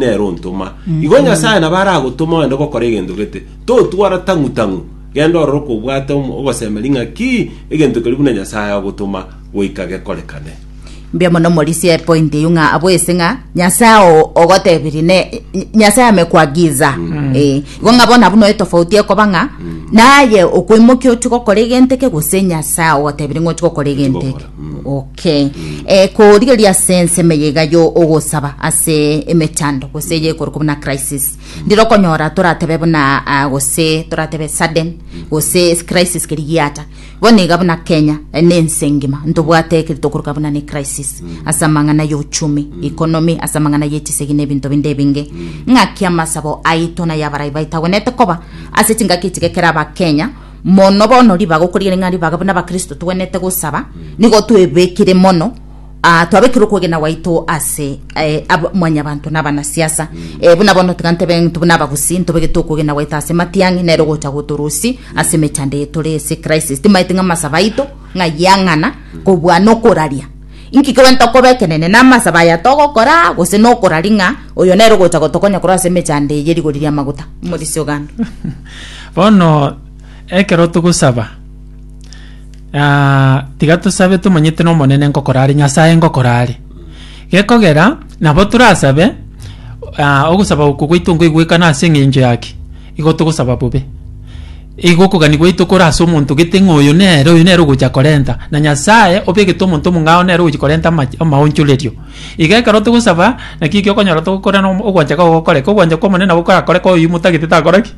nere ontoma. Igo Nyasae nabo aragotoma ogende gokora egento gete. Totwara tang'u tang'u. Genda orore okobwate omo- ogosemeria ng'a ki egento keria buna Nyasae agotoma goika gekorekane. Mbuya mono morisie point eyio ng'a abo ase ng'a nyasae o- ogotebirie ne Ny- nyasae ame kuagiza Eh, igo ng'a bono abwo no etofauti ekoba ng'a naye okwemokia ochie gokora egento eke gose nyasae ogotebirie ng'a ochie gokora egento eke Gokora, mm. Ok. Ke, eh, korigereria ase ensemo eye iga yo ogosaba ase emechando gose eye ekorokwa buna crisis ndire okonyora toratebe buna ah, gose toratebe sudden gose crisis keri giata bono iga buna kenya eh, na ense engima ntobwate ekeri tokoroka buna ne crisis ase amang'ana ya ochumi economy ase amang'ana ya echisegi na ebinto binde ebinge ng'aki amasabo aito na yabarai baito agwenete koba ase chingaki echiga ekero abakenya Mono bono ribaga okorigereria ng'a ribaga buna abakristo togwenerete gosaba nigo twebekire mono ah, twabekire okwegena gwaito ase eh, abo- mwanyabanto na abanasiasa Eh, buna bono tiga ntebe ntu buna abagusi ntobegete okwegena gwaito ase matiang'i nere ogocha gotorosi ase emechando eye tore ase crisis timaeti ng'a amasaba aito ng'a yang'ana kobua nokoraria inki kegwenta okoba ekenene na amasaba aya togokora gose nokorari ng'a oyo nere ogocha gotokonya korwa ase emechando eye rigori ria amaguta omorisia oganda Bono ekero togosaba, ah, tiga tosabe tomanyete na Omonene ngokora are, Nyasae ngokora are. Gekogera nabo torasabe, ah, ogosaba oko gwaito nkoigwekana ase eng'encho ya ki? Igo togosaba bobe. Igo okogani gwaito kore ase omonto gete ng'a oyo nere, oyo nere ogocha korenta. Na Nyasae obegete omonto omong'ao nere ogochi korenta amache amaonchorerio. Iga ekero togosaba, naki eki okonyora togokora na ogwancha kwa gokoreka. Ogwancha kwa Omonene nabo korakoreka oyio motagete takora ki?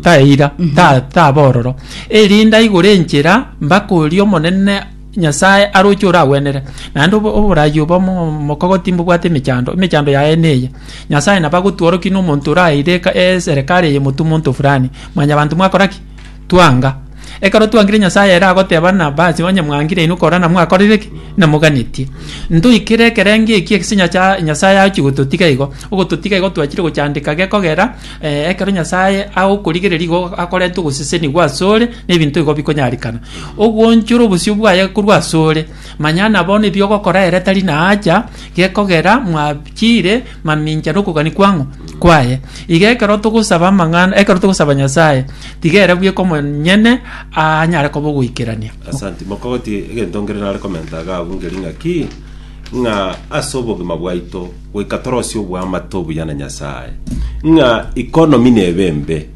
Taeira, ta taba ororo. Erinde aigure enchera mpaka oria Omonene Nyasae aroche oragwenere. Naende obo- oborayi obo mo- omokogoti mbobwate emechando, emechando yaye neye. Nyasae nabo agotworokia na omonto oraeire eka eserekari eye motumo onto fulani. Mwanyabanto mwakora ki? Twanga. Ekero twangire Nyasae ere agoteba na Abasi, Onye mwangire inwe korana mwakorire ki? na moganetie. Ntoikere ekerengo eki ase nyacha Nyasae agochia gototiga igo. Ogototiga igo twachire gochandeka gekogera eh, ekero Nyasae agokorigereria igo akorenta ogosesenigwa asore na ebinto igo bikonyarikana. Ogwoonchora obosio bwaye korwa asore, manya na bono ebiogokora ere tari naacha, gekogera mwachire mamincha na okogania kw'ang'o? kwaye. Iga ekero togosaba amang'ana, ekero togosaba Nyasae, tiga ere bweka omonyene aanyare koba ogoikerania. Asanti. Mokogoti egento nkere nare komenta iga abwo nkeri ng'aki, ng'a ase obogima bwaito goika torosie oboamate obuya na Nyasae, ng'a economy nebe embe,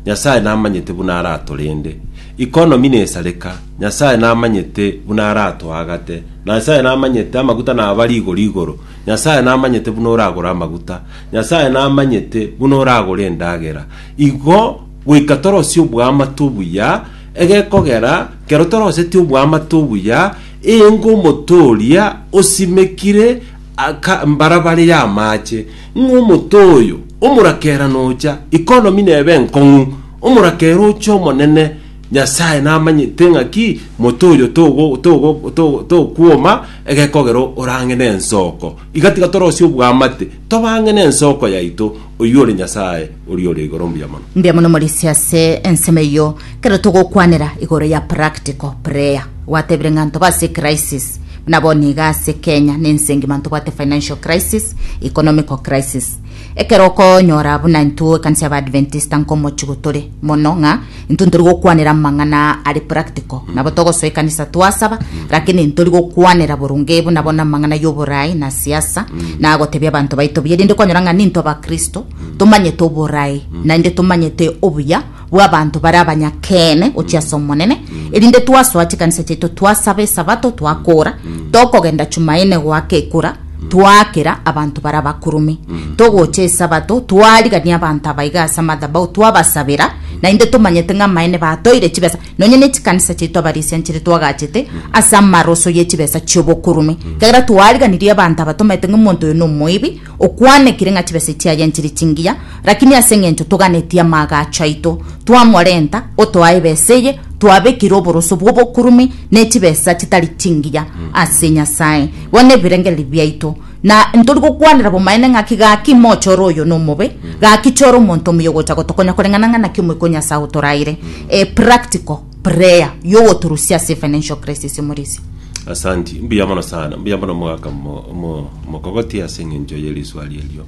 Nyasae namanyete buna aratorende, economy nesareka, Nyasae namanyete buna aratoagate, Nyasae namanyete amaguta naba rigoro igoro, Nyasae namanyete buna oragore amaguta, Nyasae namanyete buna oragore endagera. Igo goika torosie oboamate obuya, egekogera kero toroseti oboamate obuya, engo omoto oria osimekire aka mbarabare y'amaache, ng'a omoto oyo omorakera nocha, economy nebe enkong'u, omorakera oche omonene, Nyasae namanyete ng'aki moto oyo togo- togo- to- tokwoma, Egekogero orang'e nensoko, iga tiga torosie obwamate, tobang'e nensoko yaito, oyio ore Nyasae oria ore igoro mbuya mono. Mbuya mono Morisia ase ensemo eyio. Kero togokwanera igoro ya practical prayer, gwatebire ng'a ntobe ase crisis. Buna bono iga ase Kenya na ense engima ntobwate financial crisis, economical crisis, Ekero okonyora buna intwe ekanisa y'Abaadventista nkomochigo tore mono ng'a intwe ntori gokwanera amang'ana are practical, nabo togosoa ekanisa twasaba, lakini ntori gokwanera boronge buna bono amang'ana y'oboraai na siasa na gotebia abanto baito buya, erinde kwanyora ng'a nintwe Abakristo tomanyete oboraai naende tomanyete obuya bw'abanto bare abanyakeene gochia ase Omonene, erinde twasoa chikanisa chiaito, twasaba Esabato, twakoora, tokogenda Chumaine goaka ekura, twaakera abanto bare abakurume, togocha Esabato, twarigania abanto aba iga ase amathabau, twabasabera, naende tomanyete ng'a amaene batoire chibesa, nonye ne chikanisa chiaito abarisianchire twagachete ase amaroso ye chibesa chi'obokurume. Ekiagera twariganirie abanto aba, tomaete ng'a omonto oyo nomoibi, Okwanekire ng'a chibesa echi chiaye nchiri chingiya, lakini ase engencho toganetie amaagacho aito, twamorenta otoa ebesa eye, twabekire oboroso bw'obokurume ne chibesa chitari chingiya ase Nyasae, bono ebirengererio biaito. Na ntori gokwanera bomaene ng'aki gaki moche ore oyo nomobe, gaki chore omonto omuya ogocha gotokonya koreng'ana ng'a naki omoika o Nyasae otoraeire. Eh, practical. prayer yogoturusia ase financial crisis emorisia Asanti, mbuya mono sana, mbuya mono mogaka mo- mo- mokogoti ase eng'encho ye riswari erio.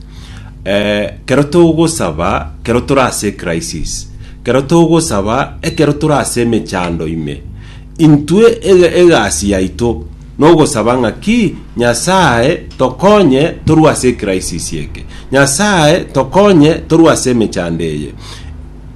Eh, kero togosaba, kero tore ase crisis, kero togosaba, ekero tore ase emechando ime, intwe ega- egasi yaito nogosaba ng'aki Nyasaye tokonye torwe ase crisis eke, Nyasaye tokonye torwe ase emechando eye.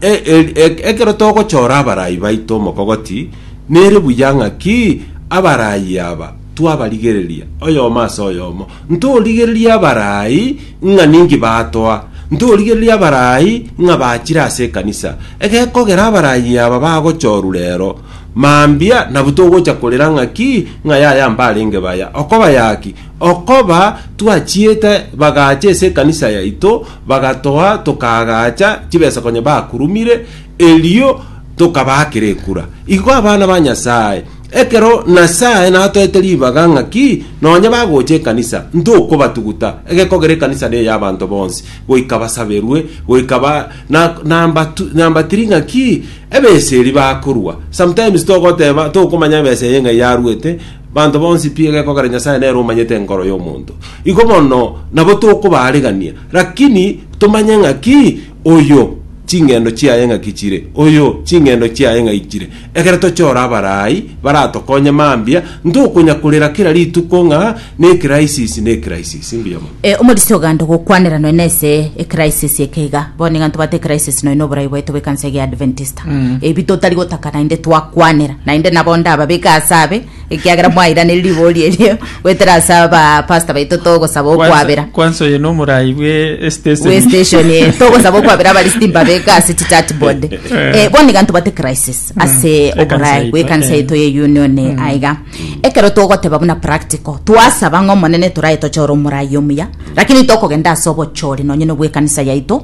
E- e- e- ekero togochora abaraai baito omokogoti, nere buya ng'aki abaraai aba twabarigereria oyomo ase oyomo. Ntorigererie abaraai ng'a ninki batoa, ntorigererie abaraai ng'a bachire ase ekanisa. Egekogera abaraai aba bagochorwa rero, mambia nabu togocha korera ng'aki ng'a yaya mbarenge baya. Okoba yaki? Okoba twachiete bagacha ase ekanisa yaito, Bagatoa tokaagacha chibesa konya bakurumire, erio tokabaakera ekura. Igo abana ba Nyasae, ekero Nasae natoete ribaga ng'aki nonya bagocha ekanisa, ntokobatuguta. Egekogera ekanisa neye y'abanto bonsi, goika basaberwe, goika ba na nambatu nambatiri ng'aki ebesa eri bakorua. Sometimes togoteba tokomanya ebesa eye ng'ai yaruete, Banto bonsi pi egekogera Nyasae nere omanyete enkoro y'omonto. Igo bono nabo tokobaarigania, rakini tomanye ng'aki oyo ching'endo chiaye ng'aki chire, oyo ching'endo chiaye ng'ai chire. Ekero tochore abaraai baratokonye mambia, ntokonya-korera kera rituko ng'a n'ekrisis, n'ekrisis. Mbuya mono. E, Omorisia oganda ogokwanera nonya nese ekrisis eke iga. Bono nigo ntobwate ekrisis nonya noborai bwaito bw'ekansa ege ya Adventist. gotagata ebi totari gotaka naende twakwanera naende nabo ndababeke ase abe ekiagera mwairaneria ribori erio goetera ase aba pastor baito togosaba okwabera kwansa oyo no omorayi bwe estation we station eh, togosaba okwabera abarisiti mbabeke ase chichat board Eh, bono iga ntobate crisis ase Ekansa oborai yaito, bwekanisa eh. yaito ye union eh, aiga ekero togoteba buna practical twasaba ng'a omonene torae tochore omorai omuya lakini tokogenda ase obochori nonye nobwekanisa yaito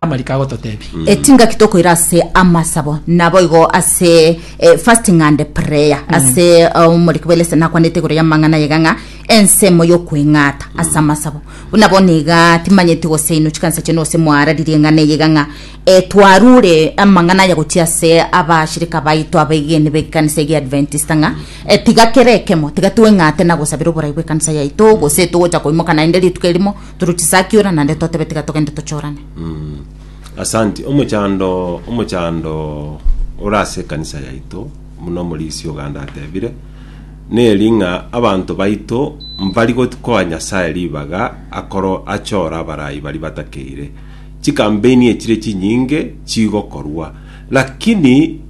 Amariko agototebia. Eti ngaki tokoira ase amasabo naboigo ase eh, fasting and prayer mm. ase eh, omoriki bwa elesa nakwanete igoro ya mang'ana yega ng'a ensemo yokweng'ata mm. ase amasabo buna bono iga timanyeti gose ino chikanisa chene gose mwararirie ng'ana eyega ng'a eh, twarure amang'ana aya gochia ase abashirika baito abaigeni bekanisa egi adventista ng'a eh, tiga kere ekemo tiga tweng'ate na gosabira oborai bwekanisa yaito gose togocha koimoka naende rituko erimo Torochisakia ora naende totebe tiga togende tochorane. Asanti. Omochando omochando ore ase ekanisa yaito buna omorisia oganda atebire neri ng'a abanto baito mbari gotikoa Nyasaye ribaga akoro achore abarai baria batakeire. Chikampeni echire chinyinge chigokorwa lakini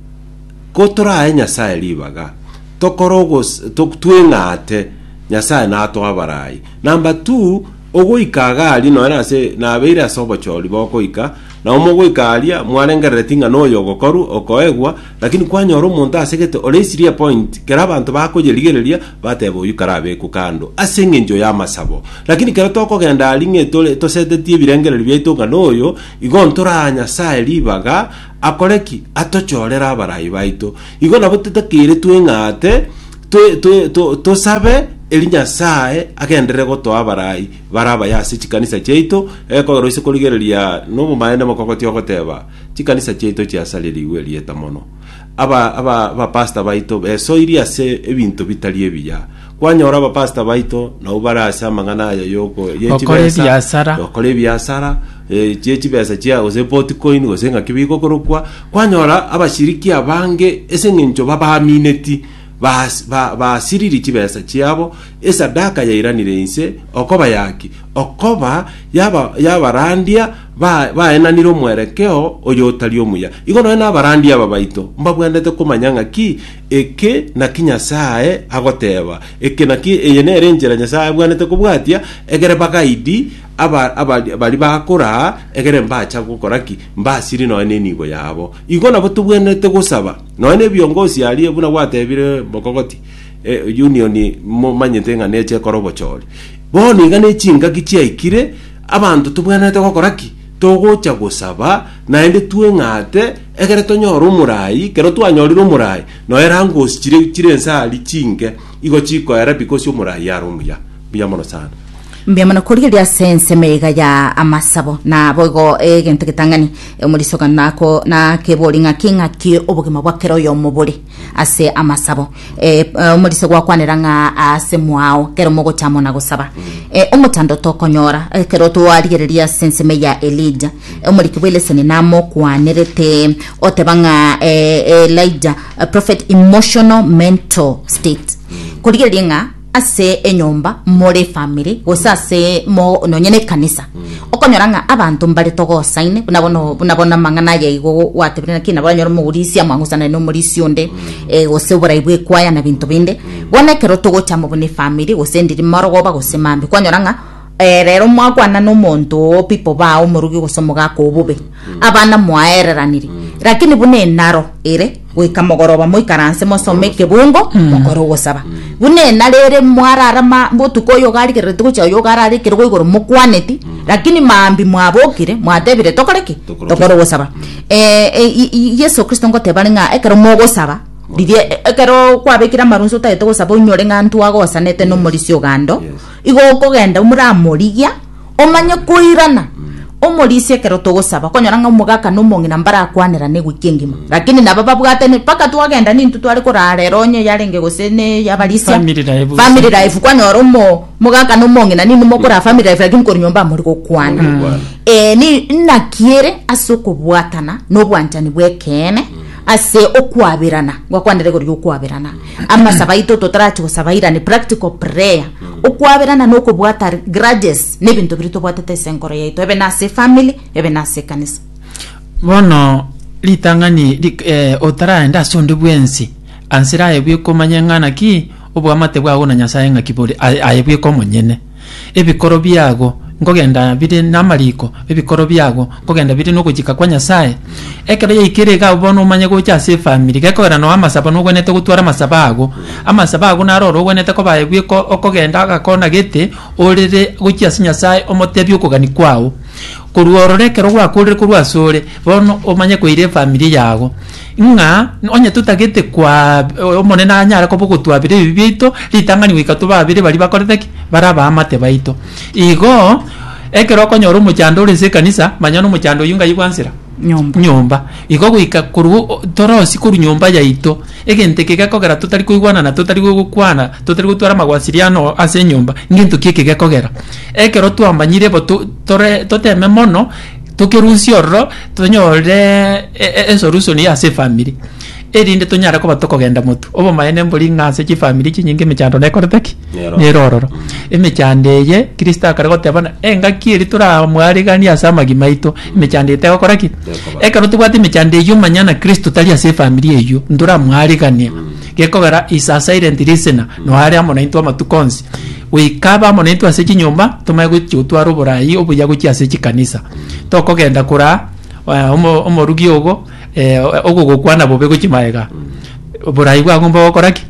kotorae Nyasaye ribaga tokore ogos- to- tweng'ate Nyasaye natoe abarai Number two, ogoika iga aria nonye ase nabeire ase obochori bogoika, nabo mogoika aria mwarengerereti ng'a noyo ogokoru okoegwa, lakini kwanyora omonto asegete oreisirie epoint, kera abanto bakoyerigereria bateba oyio karabekwe kando ase eng'encho y'amasabo. Lakini ekero tokogenda aria ng'a etore tosetetie ebirengererio biaito ng'a noyo igo ntoraa Nyasaye ribaga, Akore ki? Atochorere abarai baito. Igo nabo titakeire tweng'aate twe- twe- to- tosabe eri Nyasae agenderere gotoa abarai bare abaye ase chikanisa chiaito, ekogera oise korigereria nobomaene mokogotia ogoteba, Chikanisa chiaito chiasarerigwe erieta mono. Aba- aba- abapastor baito besoiri ase ebinto bitari ebiya. Kwanyora abapastor baito nabo bare ase amang'ana aya yoko ye Gokora chibesa, ebiasara. gokora ebiasara eh, chie chibesa chia gose potcoin gose ng'aki bigokorokwa kwanyora abashiriki abange ase eng'encho babaamineti bas- ba- basiriri chibesa chiabo esadaka yairanire inse okoba yaki okoba yaba- yabarandia ba- baenanire omwerekeo oyo otari omuya igo nonya nabarandia aba baito mbabwenerete komanya ng'aki Eke naki Nyasae agoteba, eke naki, eye nere enchera Nyasae abwanete kobwatia, egere bagaidi aba, aba, baria bakoraa, egere mbacha gokora ki? Mbasiri nonya nenibo yabo. Igo nabo tobwenerete gosaba, nonya nebiongosi aria, buna gwatebire Mogogoti, eh, union momanyete ng'a neche ekore obochori. Bono iga nechingaki chiaikire, abanto tobwenerete gokora ki? Togocha gosaba, naende tweng'ate, Ekero tonyora omorai, kero twanyorire omorai, nonya erangosi chire chire ense aria chinke, igo chikoera because omorai are omuya. Mbuya mono sana. Mbuya mono korigereria ase ensemo iga ya amasabo. Na boigo egento getang'ani, omorisiokano nako nakebori ng'aki ng'aki obogima bwa kera oyomo bore. ase amasabo eh, eh, omorise gwakwanera ng'a ase mwao kero mogochamo na gosaba eh, omotando tokonyora eh, kero twarigereria ase ensemo ya elija Eh, omoriki bw'eleseni namokwanerete oteba ng'a eh, elija eh, prophet emotional mental state korigereria ng'a ase enyomba more efamiri gose ase mo nonye na ekanisa okonyora ng'a abanto mbare togosaine buna bono buna bono amang'ana aya igo gwatebire naki nabo onyore omorisia mwagosanire na omorisia onde eh, gose oborai bwa ekwaya na binto binde bono ekero togocha amo buna efamiri gose ndiri marogoba gose mambia kwanyora ng'a Reero mwakwana nomonto oo pi kobaa omorogi gose omogaka o bobe, abana mwaereraniri. Lakini buna enaro ere, goika mogoroba moikaranse mosome ekebungo, mokore ogosaba. Buna enaro ere mwararama botuko oyo ogarigerereti gochia oyo ogarara ekerogo igoro mokwaneti, lakini maambia mwabokire mwatebire tokore ki? Tokore ogosaba. Eh, eh, i- i- Yeso Kristo ngoteba are ng'a ekero mogosaba, riria e- ekero kwabekire amarunse otagete gosaba onyore ng'a ntwagosanete nomorisia ogando, Igo okogenda moramorigia, omanye koirana omorisia ekero togosaba, okonyora ng'a omogaka na omong'ina mbarakwanerane goika engima. Lakini nabo babwate ne- mpaka twagenda nintwe tware korara ere onye yarenge gose ne yabarisia Family life gose. family life kwanyora omo omogaka na omong'ina ninwe mokora family life lakini kore nyomba amori gokwana Gokwana. Eh, ni- naki ere ase okobwatana na obwanchani bw'ekeene ase okwaberana, ngwakwanere rirorio okwaberana amasaba aito totorachi gosaba irane practical prayer okwaberana na okobwata grudges na ebinto biria tobwatete ase enkoro yaito ebe nase family ebe nase ekanisa bono ritang'ani rik- eh, otaraende ase onde bwensi ansira aye bweka omanye ng'a naki oboamate bwao na nyasaye ng'aki bore aye aye bweka omonyene Ebikoro biago nkogenda bire namariko, ebikoro biago nkogenda bire nogochika kwa Nyasae. Ekero yaikire iga abwo bono omanye gocha ase efamiri, gekogera nao amasabo nogwenerete gotwara amasabo ago. Amasabo ago naro ore ogwenerete kobaye bweka okogenda agakona gete orere gochia ase Nyasae omotebie okogania kwao. Korwa ororo ekero gwakorire korwa asore, bono omanye koira efamiri yago. ng'a onye totagete koa, Omonene anyare koba ogotuabera ebibe biaito, ritang'ani goika tobe abere baria bakorete ki? bare abaamate baito. Igo, ekero okonyora omochando ore nse ekanisa, manya nomochando oyio ngai bwansera? Nyomba. nyomba. Igo goika korwa o- torosie korwa nyomba yaito, egento eke gekogera totari koigwana na totari gokwana, totari gotwara amagwasiriano ase enyomba, ngento ki eke gekogera? Ekero twamanyire bo to- tore toteme mono. Tokerusie ororo tonyore e- e- esolution ya ase efamiri, erinde tonyare koba tokogenda motu. Obomaene mbori ng'a ase chifamiri chinyinge emechando nekorete ki? Nero. Nero ororo. Emechando eye, Kristo akare goteba buna engaki eria toramwareganie ase amagima aito, emechando eye tegokora ki? Tekoba. Ekero tobwate emechando eyio manyana Kristo tari ase efamiri eyio, ntoramwaregania, gekogera is a silent listener, noo are amo naintwe amatuko onsi. Goika abe amo naintwe ase chinyomba, tomanye gochia gotwara oborai obuya gochia ase chikanisa. Tokogenda koraa eh, omo- omorugi ogo eh, ogogokwana bobe gochia magega. Oborai bwagomba gokora ki?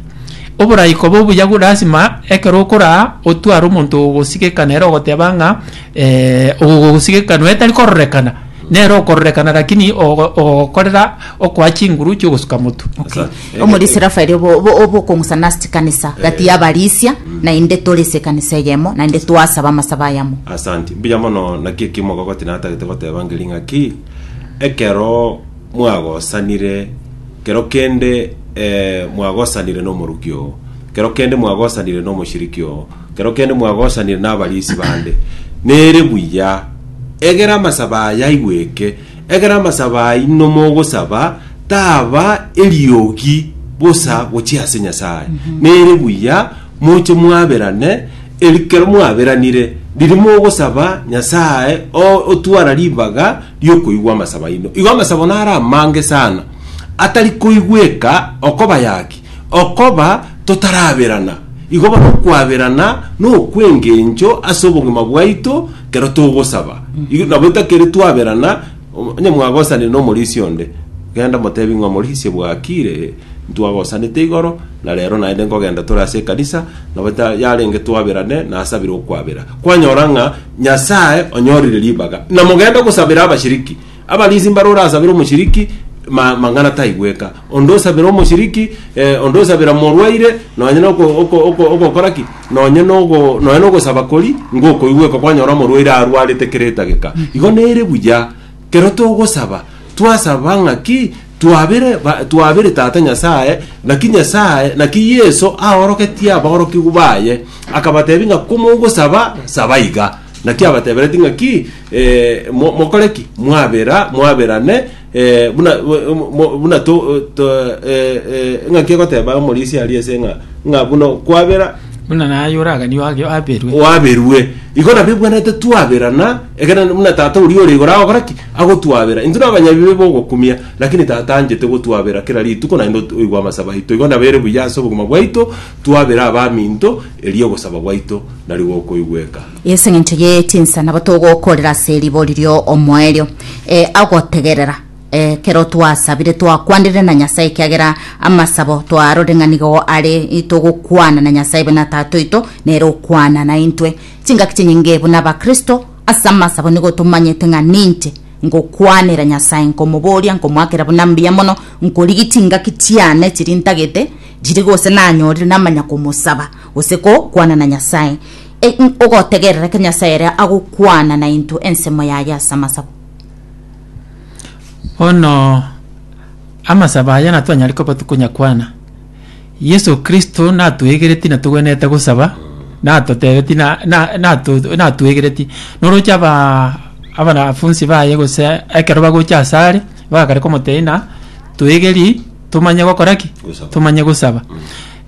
Oborai koba obuya go- lasima ekero okoraa otware omonto ogogosigeka nere ogoteba ng'a eh, ogogosigeka nonya tari kororekana, nere okororekana lakini ogo- ogogokorera okoa chinguru chiogosuka motu. Okay. Omorisia Rafaeli obo- obo- obokong'usa nase chikanisa gati y'abarisia, naende tore ase ekanisa eyemo, naende twasaba amasabo ayamo. Asanti. Mbuya mono naki eki mogogoti natagete goteba ngeri ng'aki ekero mwagosanire kero kende eh, mwagosanire n'omoruki oo kero kende mwagosanire n'omoshiriki oo kero kende mwagosanire n'abarisi bande nere buya egera amasaba aya aigweke Ekero amasabo aino mogosaba taba eriogi bosa gochia ase Nyasae, nere buya moche mwaberane, ekero mwaberanire, riria mogosaba Nyasae o- otwara ribaga riokoigwa amasabo aino. Igo amasabo naro amange sana, atari koigweka okobayaki, okoba totaraberana. Igo bono okwaberana nokwengencho ase obogima bwaito, Ekero togosaba, igo nabo itakeri twaberana, o- onye mwagosanire na omorisia onde, genda motebi ng'a omorisia bwakire, ntwagosanete igoro, na rero naende nkogenda tore ase ekanisa, nabo ta- yarenge twaberane, nasabire okwabera. Kwanyora ng'a Nyasae onyorire ribaga, na mogende gosabera abashiriki. Abarisi mbaro orasabere omochiriki ma- mang'ana taigweka, onde osabera omochiriki, eh, onde osabera morwaire, nonye noko- oko- oko- ogokora ki nonye nogo nonye nogosaba kori ngokoigweka kwanyora omorwaire arwarete kera etageka igo nere buya kero togosaba twasaba ng'aki twabere ba- twabere tata nyasaye naki nyasaye naki yeso aorogetie abaorokigwa baye akabatebia ng'a komogosaba saba iga Naki abatebereti ng'aki, eh, mo- mokore ki? Mwabera, mwaberane, eh, buna, mo- mo- buna to, to, eh, eh, ng'aki egoteba omorisia aria ase ng'a, ng'a buna kwabera, buna naye oraganio age aberwe waberwe igo nabio ebwanete twaberana ekero nende buna tata oria ore igoro agokora ki agotwabera intwe na abanyabibe bogokumia lakini tata anchete gotwabera kera rituko naende ot- oigwe amasabo aito igo nabere buya ase obogima bwaito twabera abaminto Erio ogosaba gwaito nari gokoigweka. Ase engencho ye chinsa nabo togokorera ase ribori rio omoerio, e, agotegerera, e, kero twasabire twakwanire na Nyasae ekiagera amasabo twarore ng'a nigo are togokwana na Nyasae buna Tata oito nere okwana naintwe. Chingaki chinyinge buna Abakristo ase amasabo nigo tomanyete ng'a ninche ngokwanera Nyasae, nkomoboria, nkomoakera buna mbuya mono, nkorigi chingaki chiane chiri ntagete, Chiri gose nanyorire namanya komosaba gose ko kwana na Nyasae. E, ogotegerera ke Nyasae ere agokwana na into ensemo yaye ase amasabo. Bono amasaba aya natwanyare koba tokonyakwana. Yeso Kristo natwegereti natogwenerete gosaba, natotebeti na- na- nato- natwegereti. Noroche abaa abanafunsi baye gose ekero bagocha asare, bagakare komotebia ng'a twegeri, tomanye gokora ki? Gosaba. Tomanye gosaba.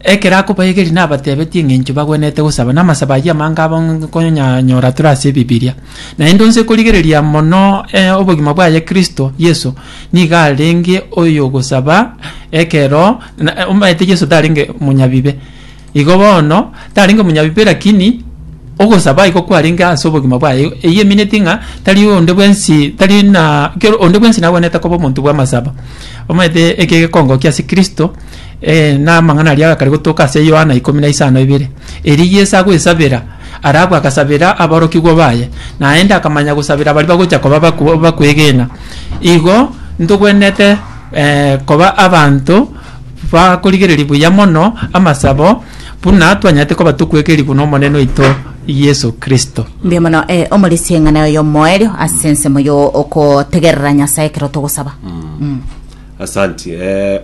Ekero akobaegeria nabatebetie eng'encho bagwenerete gosaba, na amasabo ayio amange abo nkonyanyora tore ase Ebibiria. Naende onsi okorigereria mono eh, obogima bwaye Kristo Yeso, nigo arenge oyogosaba ekero na- omanyete Yeso tarenge omonyabibe. Igo bono, tarenge omonyabibe lakini ogosaba iko kwarenge ase obogima bwaye, eyio emineti ng'a tari onde bwensi tari na kero onde bwensi nagwenerete koba omonto bw'amasaba. Omanyete eke gekongokia ase Kristo, eh na amang'ana aria agakare gotoka ase Yohana ikomi na isano ibere. Erio Yeso agoesabera, arabu agasabera aborokigwa baye, naende akamanya gosabera baria bagocha koba baku bakwegena. Igo ntogwenerete. koba abanto bakorigereria buya mono amasabo, buna twanyarete koba tokwekerigwa n'Omonene oito Yeso Kristo. Mbuya mono eh, omorisia eng'ana oyo omoerio ase ensemo yo okotegerera Nyasae ekero togosaba. Mm. Asanti. Eh,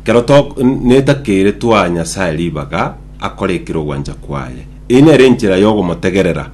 kero to netakeire twa Nyasae ribaga akore ekero ogwancha kwaye. Eye nere enchera yogomotegerera.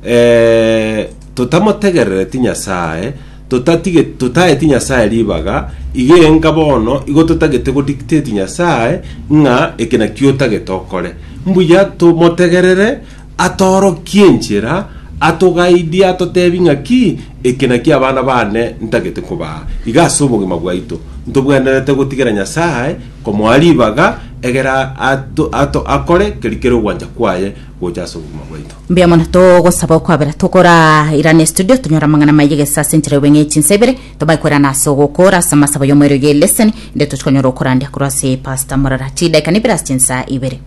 Eh, totamotegerereti Nyasae Totatige, totaeti Nyasae ribaga, iga enka bono igo totagete go dictate Nyasae ng'a eke nakio otagete okore. Mbuya tomotegerere atorokie enchera, atogaidie atotebi ng'aki eke nakio abana bane ntagete kobaa. Iga ase obogima bwaito ntobwenerete gotigera Nyasae komoa ribaga egere ato, ato, akore keri kere ogwancha kwaye gocha ase obogima bwaito. Mbuya mono togosaba okwabera tokorairane studio tonyore amang'ana maiyo gese ase enchera y'obeng'ei chinsa ibere tobae koirana ase ogokora ase amasabo y'omoerio ye leseni inde tochi konyora okorandia korwa ase pastor morara chidakika nibere ase chinsa ibere